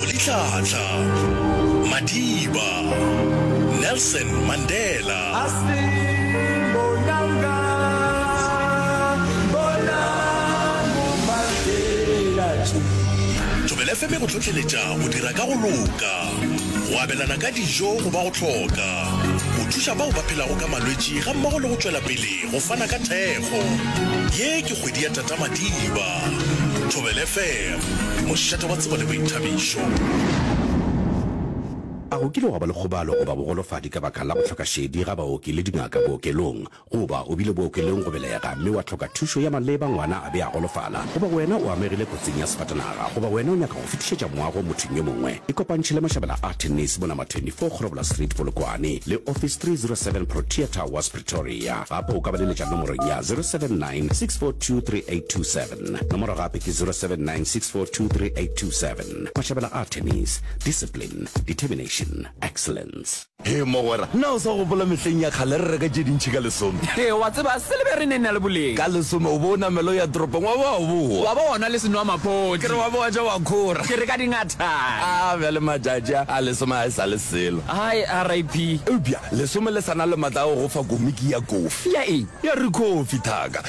Litlhatlha, Madiba, Nelson Mandela. Thobela FM e go hlohleletša go dira ka go loka, go abelana ka dijo go ba go hloka, go thuša bao ba phelago ka malwetši gammogo le go tšwela pele go fana ka thekgo. Ye ke kgwedi ya Tata Madiba. Thobela FM. Ke mošate wa tsebo le boithabišo. A go kile gwa ba le kgobalo goba bogolofadi ka baka la go hloka šedi ga baoki le dingaka bookelong? Goba o bile bookelong go belega mme wa hloka thušo ya maleba ngwana a be a golofala? Goba wena o amegile kotsing ya sefatanaga? Goba wena o nyaka go fetišetša moago mothong yo mongwe? Ikopantšhe le Mashabela a Tennis mo Nama 24 Kgorobola Street Polokwane le Office 307 Protea Towers Pretoria. Gape o ka ba leletša nomorong ya 079 642 3827. Nomoro gape ke 0796423827. Mashabela Artemis, Discipline, Determination, Excellence. Hee mogwera, na o sa gopola mehleng ya kgale re reka tše dintšhi ka lesome? Hee, wa tseba, se le be re ne na le boleng. Ka lesome o bo o namela o ya toropong wa ba wa boa. Wa ba wa nwa le senwamaphodi. Ke re wa ba wa ja wa khora. Ke re ka dingathane. A bjale matšatši a, a lesome a e sa le selo. Hai, RIP. Eupša lesome le sa na le matla a go go fa komiki ya kofi. Ya eng? Ya Rikhofi, thaka.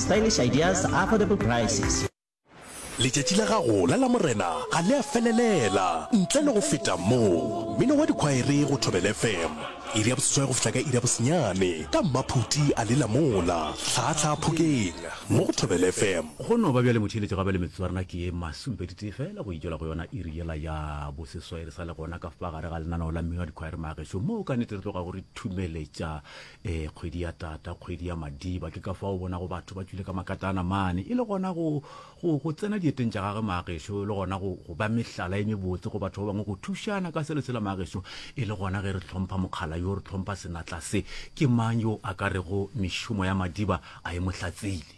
Stylish ideas, affordable prices. Letšatši la gago la Lamorena ga le a felelela ntle le go feta mo. Mmino wa dikhwaere go Thobela FM, iri ya boseswai go fihla ka iri ya bosenyane ka mmaphuti a lela mola hlaahlaa phokeng mo go Thobela FM. Go no ba bjale motheeletši gape le metswarna ke ye masomepedi tee feela go e tšwela go yona iri yela ya boseswai re sa le gona ka fa gare ga lenaneo la mmino wa dikhwaere. Maagešo moo ka nnete re tlogago re thumeletša Ee, kgwedi ya tata, kgwedi ya madiba. Ke ka fao bonago batho ba tšwile ka makatana mane, e le gona go, go, go tsena dieteng tša gage maagešo, e le gona go, go ba mehlala e mebotse go batho ba bangwe, go thušana ka se le sela maagešo, e le gona ge re hlompha mokgala yo, re hlompha senatla se. Ke mang yo a ka rego mešomo ya madiba a e mo hlatsile?